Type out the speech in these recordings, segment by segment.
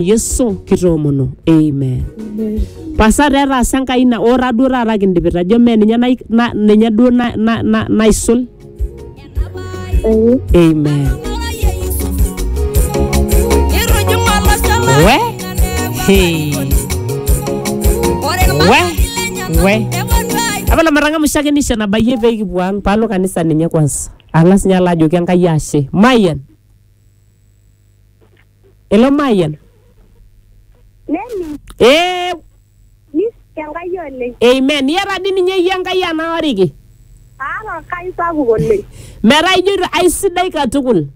Yesu kitoomono. Amen. Pasa taa etaasa Enkai ina ora duo taata kindipita ajo mee ninye nai- na- ninye duo na- na- na- naisul. Amen. We hey. We we apa lamatang'amusha ake nisho nabayie pee kipuo ang paalo kanisa ninye kwanza ang'as ninye alo ajoki Enkai ashe mayian Elo mayian. Nening Ee, nis Enkai oleng. amen. Iyata dii ninye iyie Enkai anaoriki. Aata Enkai sapuk oleng. Metaa ijoito aisidai katukul.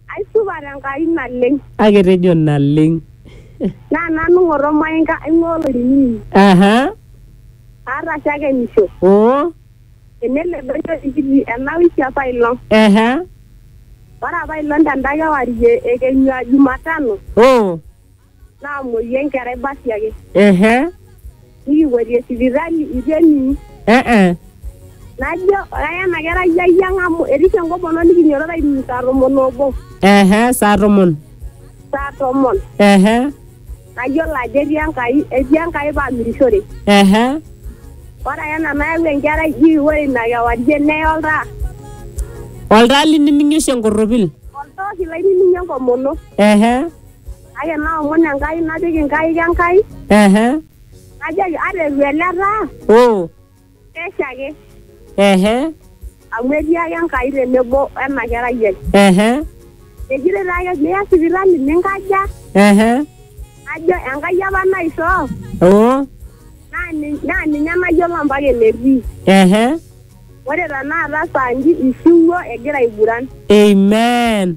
Aisupat Enkai naleng. Kake etejo naleng. Naa nanu ng'oto maing'a aing'ua olainining'oni. Aha. Aata shakenisho. Oo. Enelo edoyio enkiti enawiki apa ilo. Ehe. Ore apa ilo tenda kewarie ekenyu aa Jumatano Oh. naamuoyu enkerai basi ake. Ehe. Nikipuoitie sipitali eitu ening. Eh-eh. Najo aya ena kerai ayiang amu erisio enkomono nikinyototo ainining saa tomon oobo. Ehe. Saa tomon. Saa tomon. Ehe. Nayiolo ajo etii Enkai, etii Enkai paamirishore. Ehe. Ore ake ena nayau enkerai ji ore ina kewarie neye oltaa. Oltaa liniminie oshi enkorropil. Oltooki lainiminie enkomono. Ehe. Kake naomon Enkai napik inkaik Enkai. Ehe. Najoki ata eitu ele taa. Oo. Pesha ake. ehe Amu etii ake Enkai tenebo ena kerai ai. ehe Ejito taa ake miya sipitali ninkaja. ehe Najo Enkai apa naishoo. oo Naa nin- naa ninye nayiolo mpaka enetii. ehe Ore tenakata saa nji ishiwuo egira aiguran. amen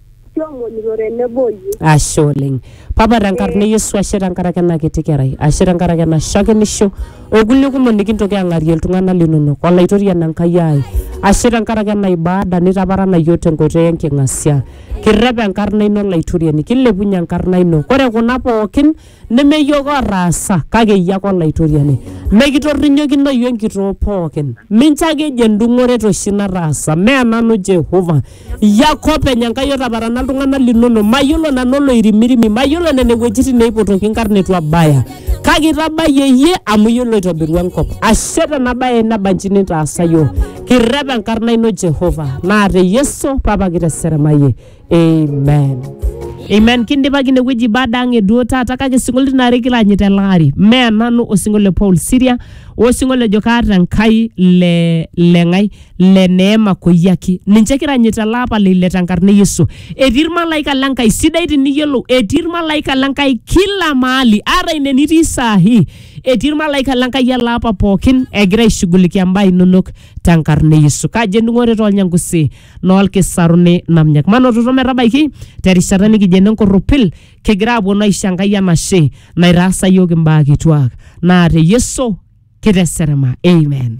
kiomonito tenebo o yie. ashe oleng papa tenkarna e yesu ashe tenkaraki ena kiti kerai ashe tenkaraki ena shakenisho okulie kumok nikintoki ang'arie iltung'anak linonok olaitoriani enkai ai ashe tenkaraki ena ibada nitaparana yiok tenkoitoi enking'asia kirrep enkarna ino olaitoriani kilepunye enkarna ino kore kuna pookin neme iyiook ootaasa kake iyie ake olaitoriani mekitorrinyokino iyie enkitoo pookin mincho ake ejo endung'oret oshi nataasa mee nanu Jehova iyie ake openy Enkai otaparana iltung'anak linono mayiolo nanu oloirimirimi mayiolo nena wuejitin neipotoki inkarn etu abaya kake itabayie iyie amu iyie loitobirua enkop ashe tena baye nabanji nitaasa iyiook kirrep enkarna ino Jehova naa te Yesu papa kiteseremayie amen Amen. Kindipaki inewueji baada ang eduo taata kake isinkolioitin aare kiranyita ele ari. Mee nanu osinkolio le Paul Siria osinkolio lejo kaata Enkai le le ng'ae le neema koyiaki. Ninche kiranyita ele apa le ile tenkarna e Yesu. Etii irmalaika le Nkai sidai tiniyiolou. Etii irmalaika le Nkai kila mahali ata ine nitii saa hii. Etii irmalaika le Nkai ele apa pookin egira aishughulikia imbaa inonok tenkarna e Yesu. Kaji ening'ore tolnyangusi loolkisaruni namnyak manototo metabaiki terishata nikijo ene nkorropil kigira aponu aisho Enkai enashe naitaasa iyiook imbaa kituak naa te Yesu kiteserema amen.